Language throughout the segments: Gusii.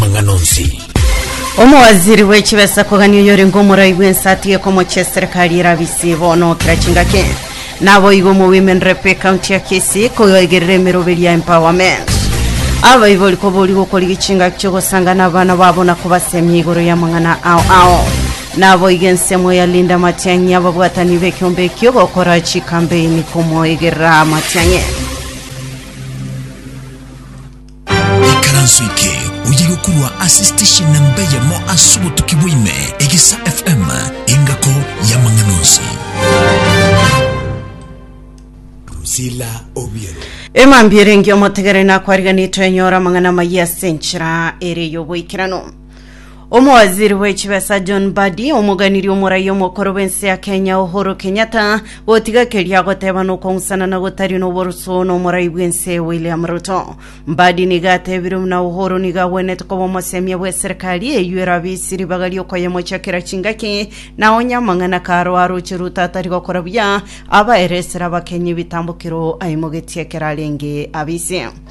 amang'ana onsi. Omowaziri bwe chibesa kogania oyorenge omorai bw'ense atige komocha eserikari erabisi bono kera chingaki naboigo mu Women Rep ekaunti ya Kisii koigerera emeroberi ya empowerment abaibori kobori gokorigia chingaki chiogosangana abana babo na kobasemia igoro ya mang'ana ao ao naboigo ensemo ya Linda Matiang'i ababwatani b'ekiombe ekio gokora chikambeini komoigerera Matiang'i Ikaranso eke oye gokorwa ase station namba eyemo ase obotuki bwaime, Egesa FM, engako y'amang'ana onsi. Drusilla Obiero. Emambia erenge omotegere nakwariganetwe enyora amang'ana amayia ase enchera ere y'oboikeranu. Omowaziri bw'echibesa John Mbadi omoganirie omoraia omokoro bw'ense ya Kenya Uhuru Kenyatta gotiga keria agoteba nokong'usana na gotari noborusu nomorai bw'ense William Ruto. Mbadi niga atebire buna Uhuru niga agwenete koba omosemia bw'eserikari eyio erabe isi ribaga riokoyemochakera chingaki na onye amang'ana karo aroche Ruto atari gokora buya abaere esera Abakenya ebitambo kiro aimogetie ekero arenge abise.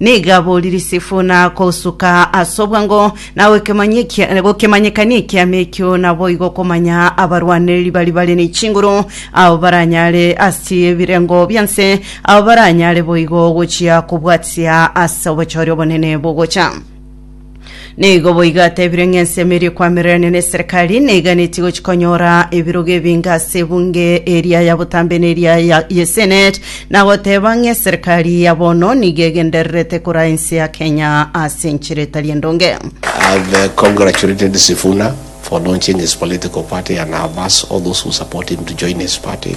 Nigo aborire Sifuna kosuka ase obwango na gokemanye- kia- gokemanyekania ekiama ekio, naboigo okomanya abarwanereri baria bare ne chinguru, abo baranyare ase ebirengo bia nse, abo baranyare boigo gochia kobwatia ase obochore obonene bogocha. Nigo boigo atebire ng'a ensemo eria ekwamirenania neserikali neiganetie gochi konyora ebirogo ebinge ase ebunge eria ya botambe na eria ya yesenate na goteba ng'a eserikali ya bono nigo egendererete koraa ense ya Kenya ase enchera etari endonge. I've uh, congratulated Sifuna for launching his political party and have asked all those who support him to join his party.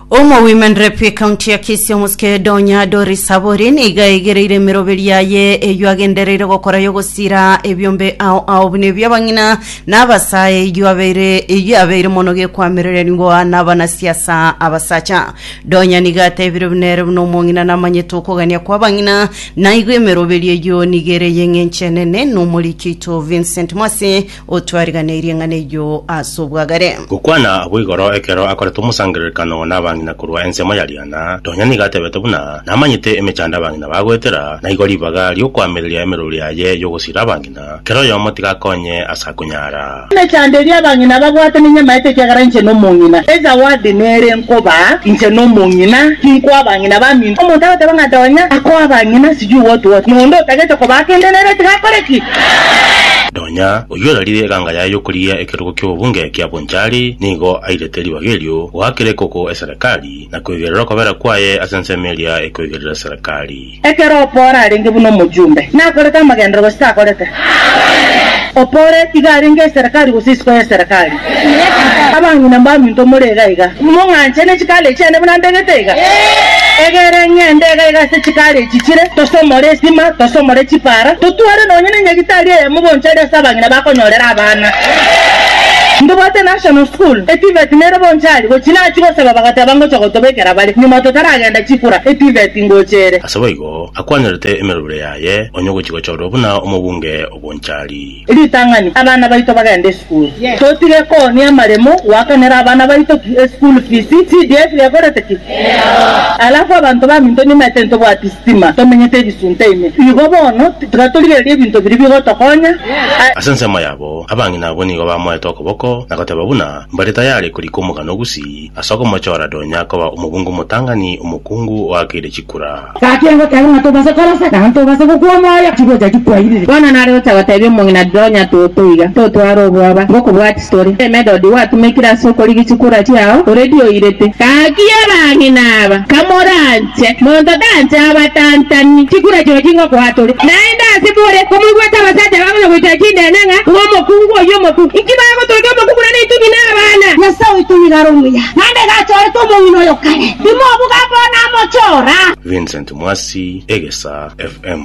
Omogwimen're bw'ecounty ya Kisii omosike Donya Doris Saburi nigo aigereire emeroberi yaye eyio agendereire gokora y'ogosiira ebiombe ao ao buna ebi'abang'ina na abasae eyio abeire eyio abeire mono gekwamererigwa nabanasiasa abasacha. Donya nigo atebire buna ere buna omong'ina namanyete okogania kw'abang'ina naigo emeroberi eyio nigo ere y'eng'encho enene n'omoriki oito Vincent Mwasi O twariganeirie ng'ana eyio ase obwagare. Gokwana abwo igoro ekero akorete omosangererekano nabang'ina korwa ensemo ya Diana, nonya nigo atebete buna, Namanyete emechando abang'ina bagoetera, na igo ribaga riokoamereria emeruru yaye yogosiira abang'ina, kera oyomo tiga akonye ase akonyara. Emechando eria abang'ina babwate ninyamaete ekiagera inche nomong'ina. Ezawadi nere nkobaa inche nomong'ina, tinkoa abang'ina baminto. Omonto agoteba ng'a ndonya akoa abang'ina sijui what what, na onde otagete kobaa kende nere tiga akore ki? Nonya oyio orarire eganga yaye y'okorigia ekerogo ki'obobunge kia Bonchari nigo airete ribaga erio goakera ekoko eserekari, na kweigerera okobera kwaye ase ensemo eria ekoigerera eserekari. Ekero Oppora arenge buna omochumbe, nakorete amagenderero gose takorete? Oppora iga arenge eserekari gose isiko y'eserekari? Abang'ina mbaminto more iga iga, nimong'anche ne chikaare chiane buna ndegete iga? Egere ng'ende iga iga ase chikaare echi chire, tosomore esima, tosomore chipara, totware nonya nenyagitari eyemo bonsi aria ase abang'ina bakonyorera abana. Ndobwate National School, eTVET nere bonsi aria, gochia nachia gosaba bagateba ngocha gotobekera bare, nyuma totaragenda chikura, eTVET ngocha ere. Ase boigo, akwanyorete emerobire yaye, onye ogochia gochorwa buna omobunge obonchari. Ritang'ani, Abana baito bagende esukuru. Totige koonia amaremo goakanera abana baito ki? Eschool fees. CDF yegorete ki? Alafu abanto baminto nimaete ntobwati sitima, tomenyete ebisunte ime. Igo bono tiga torigererie ebinto biria bigotokonya. Ase ensemo yabo, abang'ina abwo nigo bamoete okoboko na goteba buna mbare tayari korika omogano o Gusii. Ase okomochora Donya akoba omobunga omotang'ani, omokungu oakeire chikura. Gaki egoteba ng'a tobase korosa, naende tobase gokwa omoyo, chigocha chikwairire. Bono nare gocha gotebia omong'ina Donya toto iga, totware obwoba, ngokobwati tore. Emedodi gwatumekire ase okorigia chikura chiao, oredi oirete. Gaki abang'ina aba, kamoranywe. Inche, monto tancha abatantani, chikura chio chingokoa tore. Naende ase bore komoigwete abasacha bagocha goitera chindeene ng'a ng'omokungu oyio omokungu. Inki bagotogia omokungu na neitugi na abana? Nyasae oito nigo are omuya, naende iga achorete omong'ina oyo kare, timobuga bono amochora. Vincent Mwasi, Egesaa FM.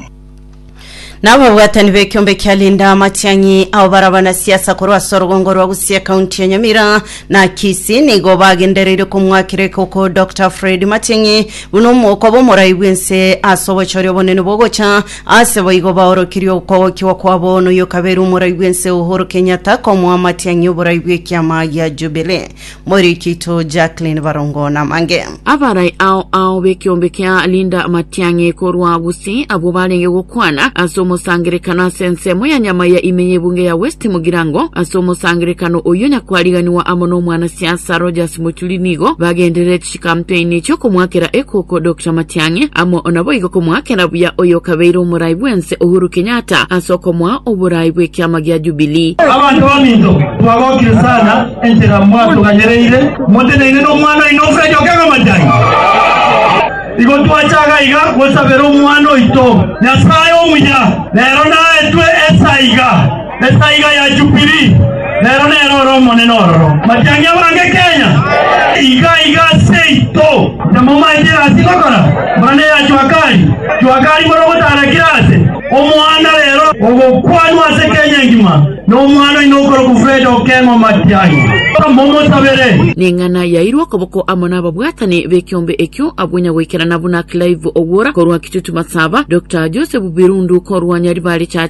Na ababwatani b'ekiombe kia Linda Matiang'i ao bare abanasiasa korwa ase orogongo rwa Gusii ekaunti ya Nyamira na Kisii nigo bagendereire komwakera ekoko Dr Fred Matiang'i buna omo- okoba omorai bw'ense ase obochori obonene bw'ogocha ase boigo baorokirie okwogokigwa kwabo noyokabeire omorai bw'ense Uhuru Kenyatta komoa Matiang'i oborai bw'ekiama gia Jubilee Morikito Jacqueline Barongo Namange. Abarai ao ao b'ekeombe kia Linda Matiang'i korwa Gusii abwo barenge gokwana ase omosangerekano ase ensemo ya nyama ya ime y'ebunge ya West Mugirango ase omosangerekano oyio nyakwariganiwa amo nomwanasiasa Rogers Mochuri nigo bagenderereti Ekampeini chi'okomoakera ekoko Doctor Matiang'i amo naboigo komoakera buya oyokabeire omorai bwense Uhuru Kenyatta ase okomoa oborai bw'ekiama gia Jubilee. Abanto baminto twagokire sana enchera mwatuganyereire moteneine nomwana oino Fred Okengo Matiang'i. Igo twachaga iga gosabera omwana oito Nyasae omuya rero naetwe esaiga. Esaiga ya Jubili, rero nere ore omonene ororo. Matiang'i abange Kenya, iga iga seito. Tamomaete egasi ngokora, buna neya Juakali. Juakali bore ogotarakire ase omoanda rero ogokwanwa ase Kenya engima nomwana oino okorokwa Fred Okengo Matiang'i. Momosabere. Neng'ana yairwe okoboko amo nababwatani bekiombe ekio abwo nyagoikerana buna Clive Ogwora korwa Kitutu Masaba, Dokta Joseph Birundu korwa Nyaribare Church,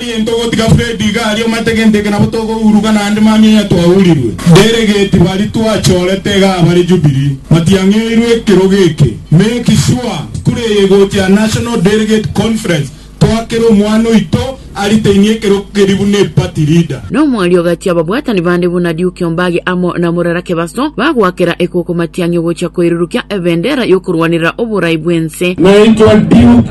Egento ogotiga Fred iga aria omate gento eke nabo togouruga naende mambia onya twaurirwe. Delegate baria twachorete iga abare Jubilee batiang'eirwe ekerogo eke. Make sure skuru eye egochia National Delegate Conference twakere omwana oito aritainie ekerogo keria buna eparty leader. Na omwari ogachia ababwatani bande buna Duke Ombagi amo na Murara Kebaso bagoakera ekoko matiang'e ogochia koirurukia ebendera y'okorwanerera oborai bw'ense. Naitwa Duke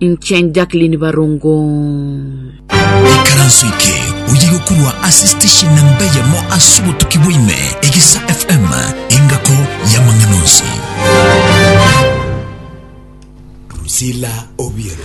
Inche Jacqueline Barongo. Ikaranso eke oye gokorwa ase station namba eyemo ase obotuki bwaime egesa fm engako y'amang'ana onsi Priscilla Obiero.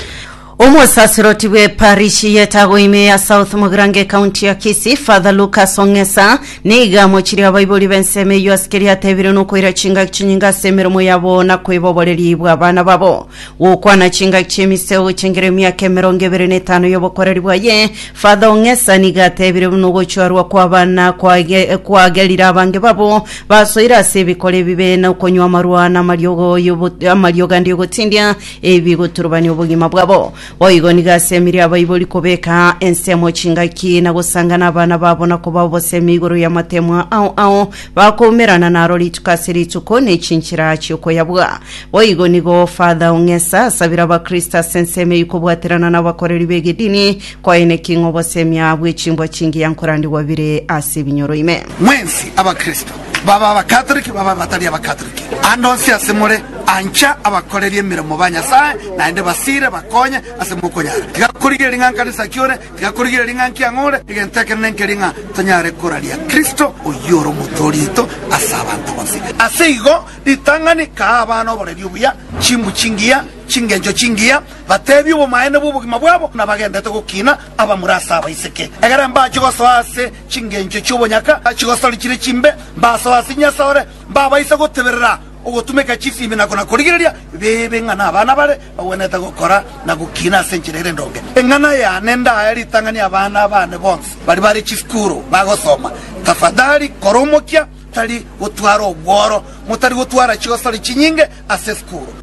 omosasiroti bw'eparishi yetagoime ya south mogirango ekaunti ya kisi father lucas ong'esa niga amochirie abaibori b'ensemo eyio ase keria atebire nokoira chingaki chinyinge ase emeremo yabo na kweboboreria bw'abana babo Gokwana chingaki chi'emiseo chengera emiaka emerongo ebere na etano y'obokoreri bwaye, Father Ong'esa nigo atebire buna ogochorwa kw'abana kwage- kwagerire abange babo basoire ase ebikora ebibe na okonywa amarwa na amariogo y'obo- amariogo ande y'ogotindia ebigoturubania obogima bwabo. Boigo nigo ase emeria abaibori kobeka ensemo chingaki na gosangana abana babo na koba obosemi igoro y'amateemwa ao ao bakoumerana naro rituko ase rituko ne chinchera chi'okoyabua. Boigo nigo Father Ong'esa asabire abakristo ase ensemo eyio kobwaterana nabakoreri b'egedini koene ki ng'obosemia bwe chimbwa chingiya nkorandigwa bire ase ebinyoro ime. Mwensi abakristo, baba Abakatoliki babe abatari Abakatoliki, ande onsi ase more, ancha abakoreri emeremo ba Nyasae naende basiire bakonye ase mokonyara. Tiga korigereria ng'a nkanisa ki ore, tiga korigereria ng'a nki ang'o ore, egento ekenene nkeria ng'a tonyare koraria Kristo oyio ore Omotooria oito ase abanto bonsi. Ase igo Ritang'ani kaa abana oboreri obuya, chimbu chingiya, chingencho chingiya, bateebie obomaene bw'obogima bwabo, na bagendete gokiina abamura ase abaiseke. Egere mbache gosoa ase chingencho chi'obonyaka, chigosori chire chimbe, mbasoe ase Nyasore, mbabaise goteberera ogotumeka chifibi na kona-korigereria bibe ng'a nabana bare bagwenerete gokora na gokiina ase enchera ere endonge. Eng'ana yane ndaye ritang'ani abana baane bonsi baria bare chisukuru bagosoma. Tafadhali kora omokia. Tari gotwara obworo. Motari gotwara chigosori chinyinge ase esukuru.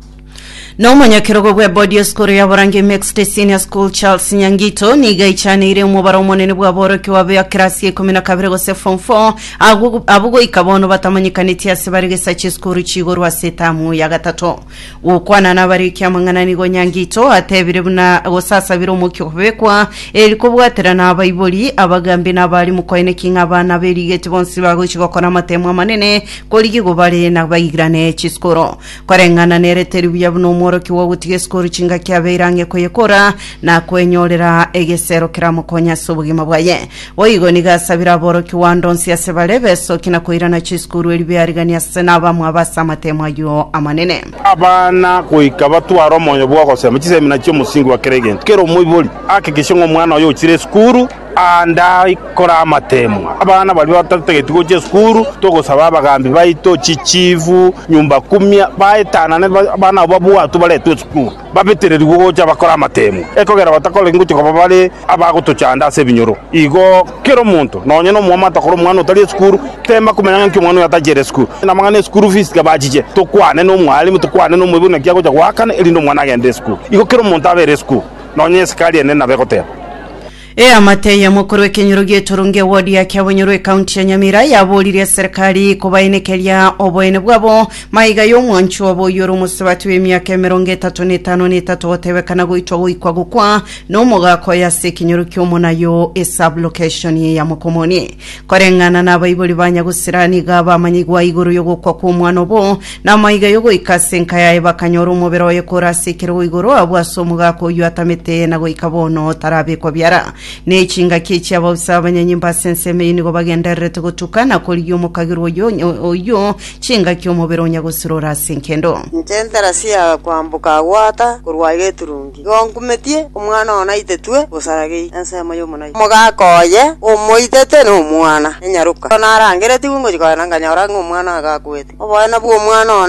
Na omonyakerogo bw'ebodi y'esukuru ya Borange Mixed Senior School Charles Nyangito nigo aichaneire omobaro omonene bw'aborokigwa ba kerasi ya ikomi na kabere gose form 4 agwo abwo goika bono batamanyekaneti ase bare gesacha esukuru chi'igoro ase etamu ya gatato. Gokwana nabare ekiamang'ana nigo Nyangito atebire buna gosasabira omokia okobekwa, eri kobwatera na abaibori, abagambi na abarimu koeneki ng'a abana berigeti bonsi bagochi gokora amatemo amanene korigia igo bare na baigirane chisukuru. Koreng'ana nere teri buya buna omworokia bwa ogotiga esukuru chingaki abeire ang'e koyekora na koenyorera egesero keramokonye ase obogima bwaye. Boigo nigo asabire aborokigwa ande onsi ase bare besoki na koirana chisukuru erio biarigani ase nabamwe aba ase amatemo ayio amanene. Abana goika batware omoyo bw'ogosema chisemina chi'omosingi wa kera egento. Kera omoibori ahakikishe ng'a omwana oye ochire esukuru ande aikore amatemo. Abana baria batatageti gocha esukuru, togosaba abagambi baito, chichifu, nyumba kumia baetanane abana abo babwatwe baretwe esukuru. babetererigwe gocha bakore amateemwa, ekogera batakoreki gochia koba bare abagotochanda ase ebinyoro. Igo kera omonto, nonya nomwamate akore omwana otari esukuru, teema komanya ng'a nki omwana oyo atachere esukuru. Namang'ana ya school fees tiga bachiche, tokwane nomwalimu, tokwane nomoibori naki agocha goakana erinde omwana agende esukuru. Igo kera omonto abe ere esukuru, nonya esikari enene nabo egoteba. Eamate y'omokoro w'ekenyoro gi'etorongi ewodi ya Kiabonyoro ekaunti ya Nyamira yaboririe eserekari kobaenekeria oboene bwabo maiga y'omwancho obo oyio ore omosubati bw'emiaka emerongo etato na etano na etato gotebekana goitwa goikwa gokwa nomogaka oye ase ekenyoro ki'omonayo esablokeshoni ya Mokomoni koreng'ana nabaibori ba Nyagusira niga bamanyigwa igoro y'ogokwa kw'omwana obo Namoiga yogoika ase enka yaye bakanyora omobere oye kore ase ekerogo igoro abwo ase omogaka oyio atamete na goika bono tarabekwa biara. Ne chingaki echi abaosi abanyanyimba ase ensemo eyio nigo bagendererete gotuka na korigia omokagirwa oyio oyio chingaki omobere onya gosirora ase enkendo. Inche ntarasi ya kwamboka agwo ata korwa aye eturungi. Igo nkumetie omwana oo naitetwe bosaragei ensemo y'omonoi. Omogaka oye omoitete nomwana, na nyaroka. Ekero narangeretigwe ngochia kogenda nkanyora ng'a omwana agaakwete. Oboene bw'omwana one.